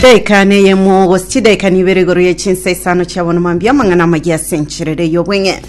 daika neyemo gose chidaika nibere igoro ye chinsa isano chiabono mambia amang'ana amaya ase encherere y'obweng'e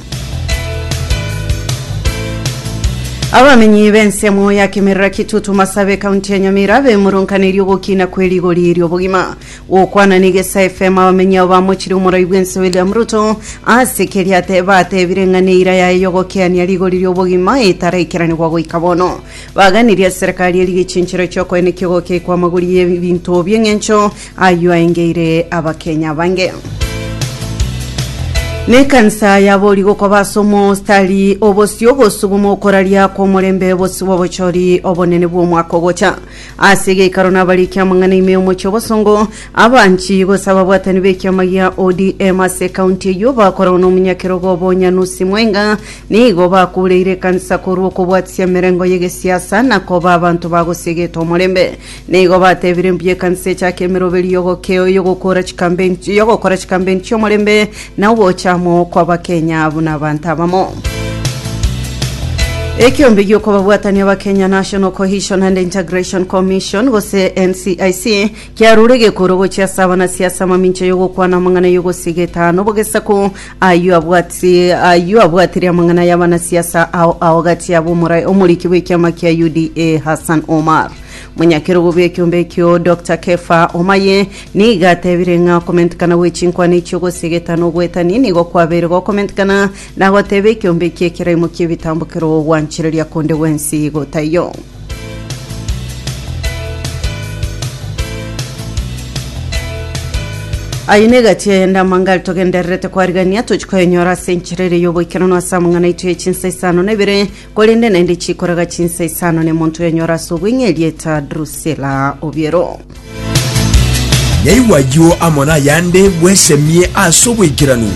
abamenyi b'ensemo ya kimerera kitutu masabe kaunti ya nyamira abemurunkaneiri ogokina kwe rigori ri'obogima gokwana n'egesa fm abamenyi abo bamochire omorai bw'ense william ruto ase keria te- batebire ng'a neira yaye yogokeania rigori ri'obogima etaraikeraniwa goika bono Baganirie eserekari eria gechinchero chi'okoena ekigogo kiaikwa amagori y'ebinto bi'eng'encho ayio aengeire Abakenya abange. Nekansa y'abori gokoba ase omostari obosio ogosuguma okoraria kw'omorembe bosio bw'obochori obonene bw'omwaka ogocha. Ase egeikaro nabarikia amang'ana ime y'omochie obosongo, Abanchii gose ababwatani b'ekiama gia ODM ase ekaunti eyio bakoragwa nomonyakerogo obo onya nusi mwenga nigo bakuureire ekanisa korwa okobwatisia emerengo y'egesiasa na koba abanto bagosia egeto omorembe. Nigo batebire mbuya ekanisa echake emeroberio y'ogokeo y'ogokora chikampeni y'ogokora chikampeni chi'omorembe na ogocha amo kw'Abakenya buna abanto abamo. Ekiombe gi'okobabwatania Abakenya National Cohesion and Integration Commission gose NCIC Kiarure egekoro gochia ase abana sia ase amamincha y'ogokwana amang'ana y'ogosiga etano bog'esaku, ayio abwati ayio abwatire amang'ana y'abana sia ase ao ao gati yabo omorai omoriki bw'ekiama kia UDA Hassan Omar. Monyakerogo bw'ekiombe ekio Doctor Kefa Omaye nigo atebire ng'a okomentikana gwe chinkwana echio gosiga etano ogwetani nigo kwabeire gokomentikana Na goteba ekiombe ekia ekeraimo ki'ebitambo kerogo gwanchereria konde gwensi igo taiyo. Aye negati eyende amangari togendererete kwarigania tochi koyenyora ase enchera ere y'oboikeranu ase amang'ana aito ye chinsa isano na ibere Korende naende chikoraga chinsa isano ne monto oyonyora ase obweng'e erieta Drusila obiero. Naigwa ayio amo nayande bwesemie ase oboikeranu.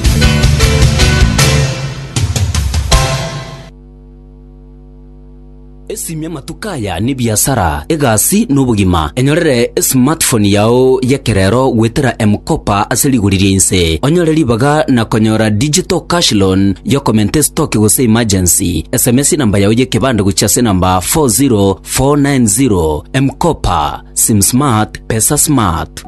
Aya nebiasara, egasi, na obogima. Enyorere esmartphone yao y'ekerero goetera M-Kopa ase rigori ria inse, onyore ribaga na konyora digital cash loan y'okomenta estoki gose emergency. Sms enamba yao y'ekebande gochia ase enamba 40490. M-Kopa. Sim smart, pesa smart.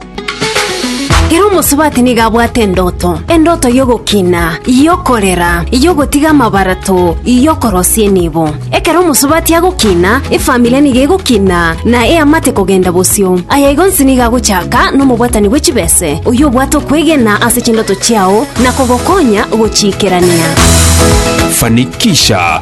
Kera omosubati nigo abwate endoto, endoto y'ogokina, y'okorera, y'ogotiga amabarato, y'okorosia enibo. Ekero omosubati agokina, efamiri nigo egokina na eamate kogenda bosio. Aya igo nsi nigo agochaka nomobwatani bwe chibese, oyio obwate okwegena ase chindoto chiao na kogokonya gochiikerania. Fanikisha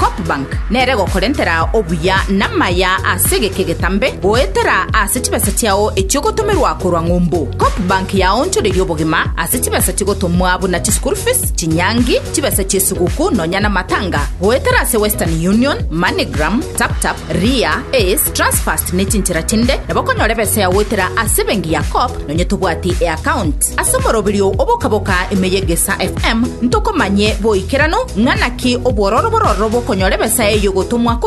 Copbank nere gokorentera obuya namaya ase egeka egetambe goetera ase chibesa chiao echiogotomerwa korwa ng'umbu. Copbank yaonchoreria obogima ase chibesa chigotomwa buna chischool fees, chinyangi, chibesa chiesiguku nonya namatanga goetera ase Western Union, Moneygram, TapTap, Ria, Ace, Transfast nechinchera chinde nabo okonyora ebesa yao goetera ase ebengi ya Cop nonya tobwati eaccount. Ase omoroberio oboka-boka ime y'Egesaa FM ntokomanye boikeranu ng'a naki obwororo bororo bokonyora ebesa eye y'ogotomwa korwa